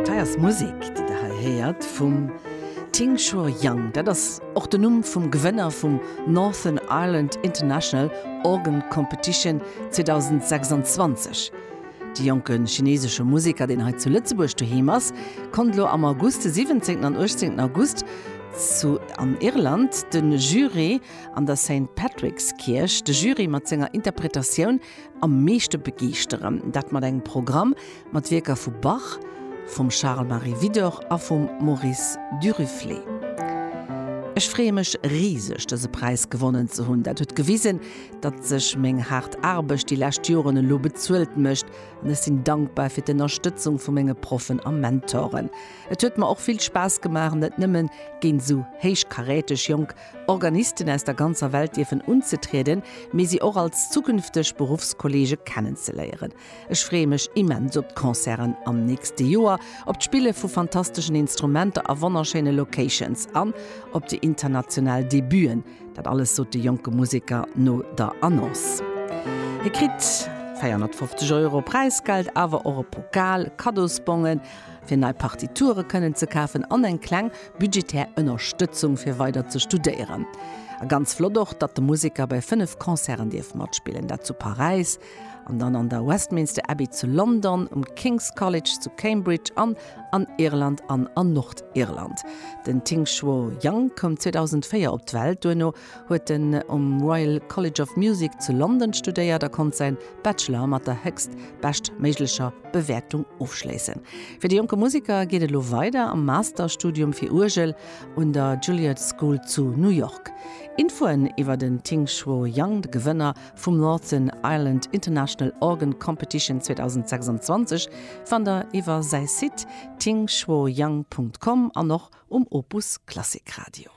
Dës Musek, déi der hei héiert, vum Tingshor Young, dat ass och den Numm vum Gewënner vum Northern Ireland International Organ Competition 2026. De jonke chineesesche Museker, deen hei zu Lëtzebuerg doheem ass, konnt elo am August, de 17. an 18. August, zu an Irland de Jury an der Saint Patrick's Kierch, de Jury mat senger Interpretatioun Am meeschte begeeschteren, dat mat engem Programm mat Wierker vu Bach, vum Charles Marie Widor a vum Maurice Duruflé. Ech freeë mech riseg, dëse Präis gewonnen ze hunn. Dat huet gewisen, datt sech meng haart Aarbecht déi lescht Joren elo bezuelt mécht an ech sinn dankbar fir d'Ënnerstëtzung vu menge Proffen a Mentoren. Et huet mer och vill Spaass gemaach, net nëmmen géint esou héichkaräteg jonk Organisten aus der ganzer Welt dierfen unzetrieden, mee si och als zukünfteg Beruffskollege kennenzeléieren. Ech freeë mech immens op d'Concerten am nächste Joer, op d'Spille vu fantasteschen Instrumenter a wonnerschéine Locations an op déi international Debuten. Dat alles sot de jonke Museker no der Annonce. Hie kritt 450 Euro Präisgeld, awer och e Pokal, Kaddosbongen, fir nei Partiture kënnen ze kafen an eng kleng budgetär Ënnerstëtzung fir weider ze studéieren. A ganz flott och, datt de Museker bei 5 Concerten dierf matspillen, dat zu Paräis an dann an der Westminster Abbey zu London, um King's College zu Cambridge an an Irland an an Nordirland. Den Ting Shuo Yang koum 2004 op d'Welt, duerno huet en um Royal College of Music zu London studéiert a konnt säin Bachelor mat der héchst bescht méiglecher Bewäertung ofschléissen. Fir de jonke Musiker geet et elo weider am Masterstudium fir Uergel un der Juilliard School zu New York. Infoen iwwer den Ting-Shuo Yang, de Gewënner vum Northern Ireland International Organ Competition 2026, fannt der iwwer säi Site tingshuoyang.com an och um Opus Klassik Radio.